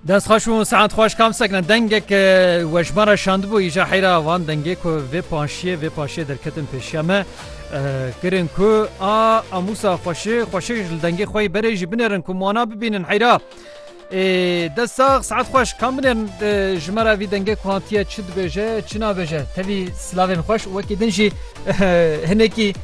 Dest xweş û saet xweş kam sekne dengek weşmara şandibû îja heyra van dengê ku vê paşiyê vê paşiyê derketin pêşiya me kirin ku a amûsa xweşi xweşi li dengê xwe berê jî binêrin ku wana bibînin heyra. Dest sax saet xweş kam binêrin ji me re vî dengê ku hatiye çi dibêje çi nabêje tevî silavên xweş wekî din jî hinekî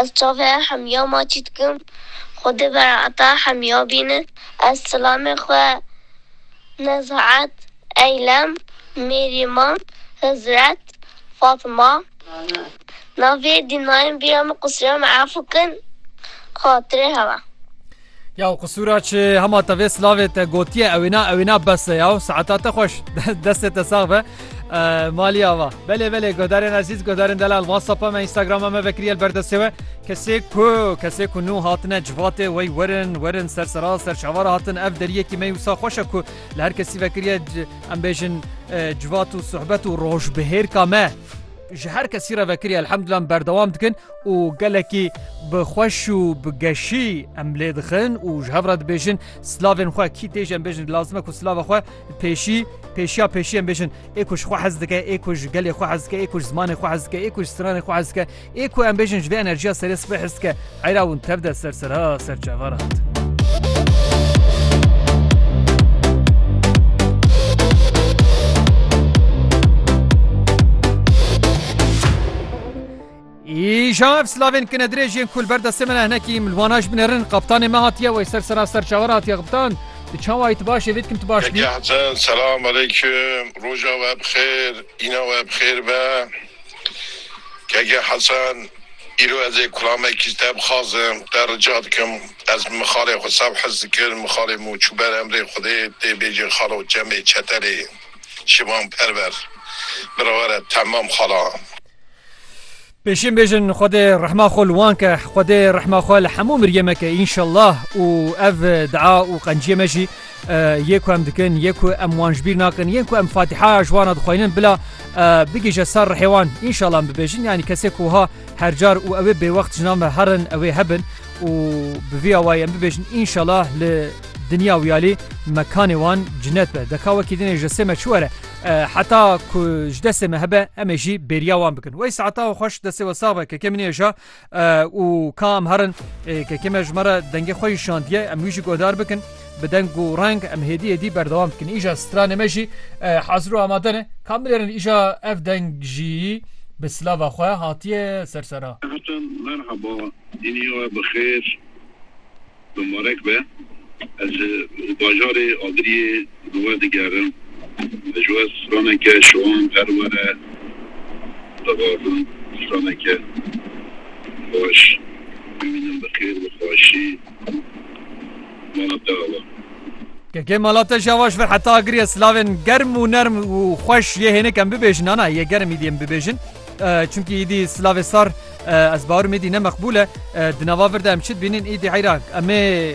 Ez çavê hemya maçî dikim. Xwedê berata hemya bîne. Ez silamê xwe Nezaet, Eylem, Mêrîman, Hizret, Fatma, navê dînayên bîra min Qusîra min efu kin xatirê hewa. Yaw qisûra çi hema te vê silavê te gotiye ew êna ew êna bes e yaw saeta te xweş destê te sax be malî ava belê belê guhdarên ezîz guhdarên delal whatsapp me Instagrama me vekiriye li berdestê we kesê ku kesê ku nû hatine civatê wey werin werin ser sera ser çavara hatin ev deriyekî me wisa xweşe ku li her kesî vekiriye em bêjin civat û sohbet û rojbihêrka me ji her kesî re vekiriye elhemdullah berdewam dikin û gelekî bi xweş û bi geşî em lê dixin û ji hev re dibêjin silavên xwe kî tê jî em bêjin lazim e ku silava xwe pêşî pêşiya pêşî em bêjin ê ku ji xwe hez dike ê ku ji gelê xwe hez dike ê ku ji zimanê xwe hez dike ê ku ji stranê xwe hez dike ê ku em bêjin ji vê enerjiya serê sibê hez dike heyra hûn tev de ser serha ser çava re hat. Îşav slavên kinedirêj yên ku li ber destê min e hinekî milwana ji min ê rin. Qaptanê me hatiye wey ser sera ser çawe re hatiye qiptan. Tu çawa yî tu baş î vê dikim tu baş nî. Yekî Hesen selam aleykum roja we bi xêr îna we bi xêr be. Yekî Hesen îro ez ê kulamekî ji te bixwazim te rica dikim ez bi mixalê xwe saf hez dikim mixalê min û çû ber emrê xwedê tê bêjin xalo çemê çeterê şivan perver bira were temam xala. Pêşîn bêjin Xwedê rehma xwe li wan ke Xwedê rehma xwe li hemû miriyê me ke înşellah û ev dua û qenciyê me jî yê ku em dikin yê ku em wan ji bîr nakin yên ku em fatîhaya ji wana dixwînin bila bigihîje ser rihê wan înşellah em bibêjin yanî kesê ku wiha hercar û ew ê bêwext ji nav me herin ew ê hebin û bi vî awayî em bibêjin înşellah li dinya wiyalî mekanê wan cinet be deka wekî dinê ji destê me çi were Heta ku ji destê me hebe em ê jî bêriya wan bikin. Wey saeta we xweş destê we sax be kekê min êja û ka em herin kekê me ji me re dengê xwe şandiye em wî jî godar bikin bi deng û reng em hêdî hêdî berdewam bikin. Îja stranê me jî hazir û amade ne. Ka bilêrin îja ev deng jî bi silava xwe hatiye ser sera. Merhaba, îniya we bi xêr. Mimarek be, ez ji bajarê Agiriyê li we digerim. Ji we straneke şivan her were dixwazim. Straneke xweş. Bimînim bi xêr û xweşî mala te ava. Kekê mala te jî ava ji vir heta Agiriyê silavên germ û nerm û xweş yê hênik em bibêjin. Nana yê germ îdî em bibêjin. Çimkî îdî silavê sar ez bawer im îdî ne meqbûl e. Di nava vir de em çi dibînin îdî heyra em ê